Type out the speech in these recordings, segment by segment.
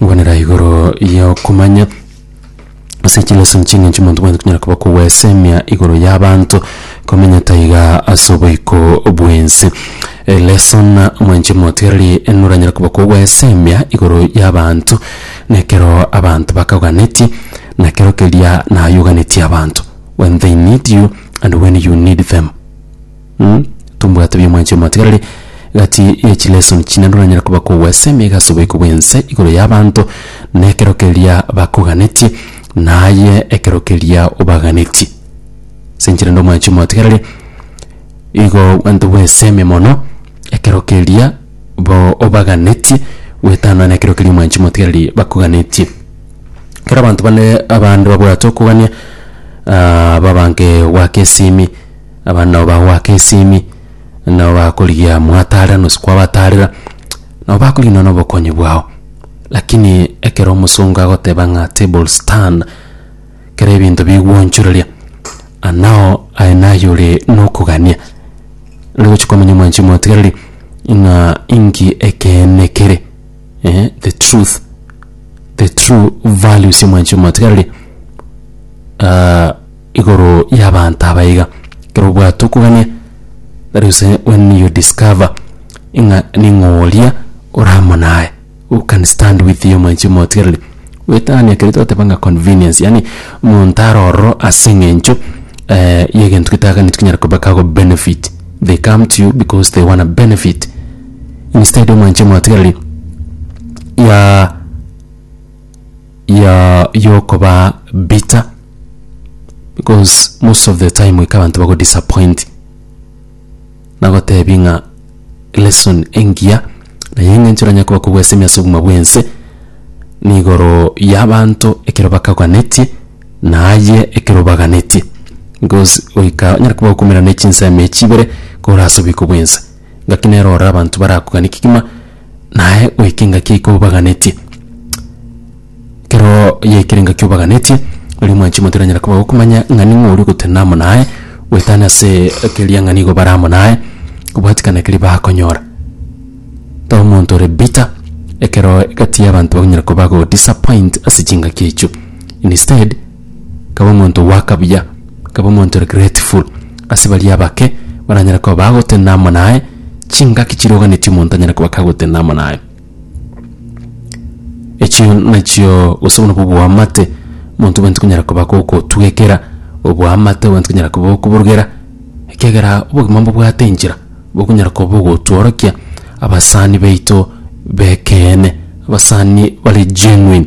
Ngwanera igoro y'okomanya ase chilosi inche ng'a inche monto bwanto konyara koba kogwesemia igoro y'abanto komenya taiga ase oboiko bw'ense. Eh, lesson, Mwanche moteereri noranyare koba kogwesemia igoro y'abanto na ekero abanto bakoganetie na kero keria naye oganetie abanto, when they need you and when you need them. Tombwate bi'omwancha omotigareri gati ye chilesoni chine roranyare koba kogwesa emega ase oboiko bw'ense igoro y'abanto, na ekero keria bakoganetie, na aye ekero keria obaganetie. Ase enchera ende omwancha omotigareri igo abanto bwesemi mono ekero keria bo obaganetie goetana na ekero keria omwancha omotigareri bakoganetie. Ekero abanto bane abande babwate okogania babange gwaka esimi Abana nabo bagoaka esimi, nabo bakorigia mwataarera nosi kwabataarera, nabo bakoriginwa nobokonyi bwao. Lakini ekero omosongo agoteba ng'a tables turn, kera ebinto bigwonchoreria, anao aye naye ore nokogania. Nari gochia komanya omwanchi omotigareri ng'a inki ekeene kere, eh, the truth, the true values ya omwanchi omotigareri. Igoro y'abaanto aba iga, ekero obwate okogania, that is when you discover ing'a ning'o oria ore amo naye who can stand with you mwanchi omotigereri, goetania ekero twateba ng'a convenience yaani omonto are ororo ase eng'encho y'egento getaganeti kenyara koba kago benefit, they come to you because they wanna benefit instead mwanchi omotigereri ya. ya yokoba bitter because most of the time ika abanto bago disappoint nagotebi ng'a lesson engiya naye eng'encho oranyare koba kobwesemi ase obogima bwense nigoro yabanto ekero bakaganetie naye ekero obaganetie because goika onyare koba okomerana chinsemo echibere korase obiko bwense. Ngaki nere orore abanto barakoganie kegima, naye goika engaki yaiko obaganetie. Kero yaikire engaki obaganetie, riria omwanchima otaranyara koba gokomanya ng'a ning'o oria ogotenena amo naye, goetania ase keria ng'a nigo bare amo naye, kobwatikana keria bakonyora. Tari omonto ore bitter, ekero egati y'abanto bakonyara koba bago disappoint ase chingaki echio. Instead. Kaba omonto ogoaka buya, kaba omonto ore grateful ase baria abake baranyare koba bagotenena amo naye, chingaki chiroganetie omonto anyare koba kagotenena amo naye. Echio nachio gose obwo nabwo oboamate, omonto obwenerete konyara koba gogotwekera oboamate obwenerete konyara koba okoborogera, ekiagera obogima mbobwate enchera bokonyara koba ogotworokia abasani baito b'ekeene, abasani bare genuine.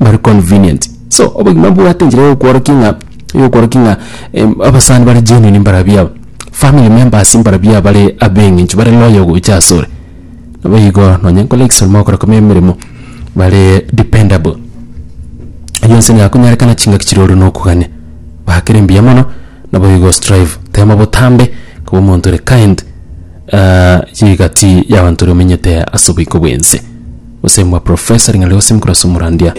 bari convenient. So obogima mbobwate enchera ya okworokia ng'a ya okworokia ng'a em abasani bare genuine mbarabwo aba, family members mbarabwo aba bare abeng'encho bare loyal gocha ase ore. Nabo igo nonye nkore egesaria mogokora kome emeremo bare dependable. Eyio ense niga konyerekana chingaki chire ore nokogania bakera embuya mono nabo igo ostrive tema botambe koba omonto ore kind. Chigati y'abanto ri'omenyete as'oboiko bw'ense. Gose mwa Profesa ring'ana rigosemi korwa as'omorandia.